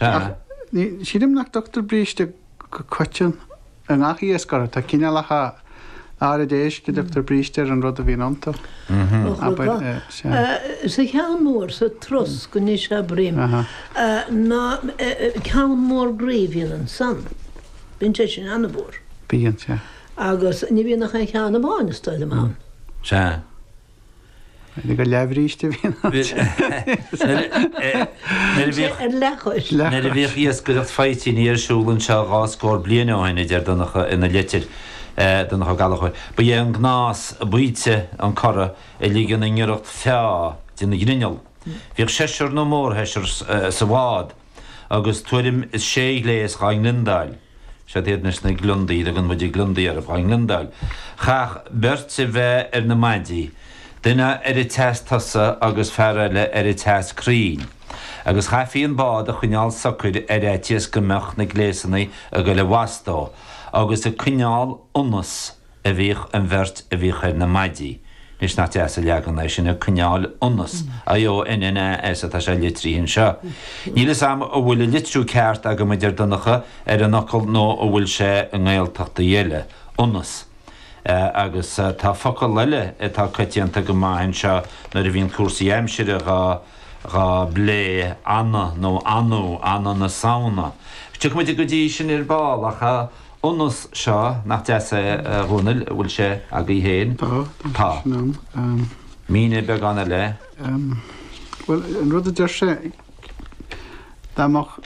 Ach ní, sílim nach dtugtar bríste go coiteann i ngach iasc orthu. Tá cineálacha áiride éisc a dtugtar bríste ar an rud a bhíonn iontu. Abair, sea. Sa cheann mór, sa trosc anois abraim, ná ceann mór groí a bhíonn ansan. Bíonn sé sin an-mhór. Bíonn, sea. Agus ní bhíonn ach aon cheann amháin, is dóigh liom, ann. Sea. Ag an leathbhríste a bhíonn an t-eolas. Nuair a bhíodh iascaireacht faoitíní ar siúl anseo dhá scór bliain ó shin, a deir Donncha ina litir, Donncha Ó Gallchóir, ba é an gnás baoite an corradh a ligean i ngiorracht feá den ghrinneall. Bhíodh seisear nó mórsheisear sa bhád. agus tuairim is sé ghléas dhá ngliondáil, siad iad anois na gliondaí a dtugann muide gliondaí orthu dhá ngliondáil, chaithfeadh beirt a bheith ar na maidí, duine ar an tseas tosaigh agus fear eile ar an tseas crainn, agus chaithfí an bád a choinneáil socair ar fhaitíos go mbeadh na gléasanna ag goil i bhfastó agus ag coinneáil ionnas. a bhíodh an bheirt a bhíodh ar na maidí anois nach deas an leagan é sin ag coinneáil ionas I O N N A S atá sé litrithe anseo níl 'fhios a'm an bhfuil an litriú ceart agam a deir Donncha ar an fhocal nó an bhfuil sé i nGaeltachtaí eile ionas agus tá focal eile atá coitianta go maith anseo nuair a bhíonn cúrsaí aimsire dhá dhá bplé anfa nó anfadh anfa na Samhna tiocfaidh muid go dtí sin ar ball ach. ionas, seo, nach deas é, a Dhomhnaill, bhfuil sé agaibh féin? Tá, tá, sin ann. Mínigh beagán eile. Bhuel, an rud a deir sé, dá mbeadh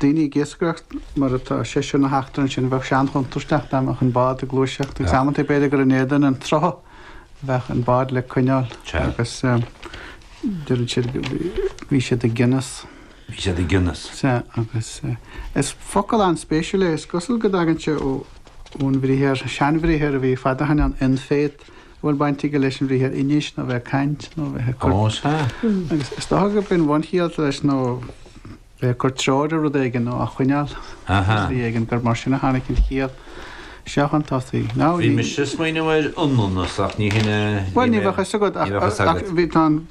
daoine ag iascaireacht mar atá seisear nó ochtar ansin, bheadh sé an-chontúirteach, dá mbeadh an bád ag gluaiseacht agus amantaí b'fhéidir gur in éadan an tsrutha a bheadh an bád le coinneáil agus deireann siad go, bhí siad ag ionas. Bhí siad ag ionas. Sea, agus is focal an-spéisiúil é. Is cosúil go dtagann sé ón bhriathar, seanbhriathar a bhí fadó shoin ann, in-fét, a bhfuil baint aige leis an bhriathar inis, nó bheith ag caint, nó bheith ag cur. Ó, sea. Agus is dócha gurb é an bhunchiall leis nó bheith ag cur treoir ar rud éigin, nó á choinneáil ar shlí éigin, gur mar sin a tháinig an chiall seo chun tosaigh. Bhí mise ag smaoineamh ar ionannas, ach ní shin a bhí mé, ní bheadh fhios agat, ach bhí, tá an.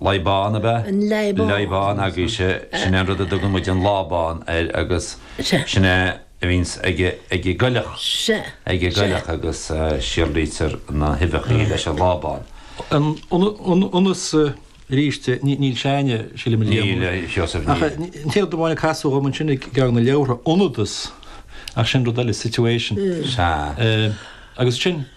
Leadhbán, ab ea? An leadhbán. Leadhbán agaibhse, sin é an rud a dtugann muid an lábán air agus sin é a bhíonns ag an gcoileach, ag an gcoileach agus síolraítear na huibheachaí leis an lábán. Ionas, arís, níl sé againne, sílim, a Liam, Níl, a Sheosaimh, níl. Ach an t-aon rud amháin a casadh dhom ansin i gceann na leabhartha, ionadas, ach sin rud eile, situation. Sea. Agus sin.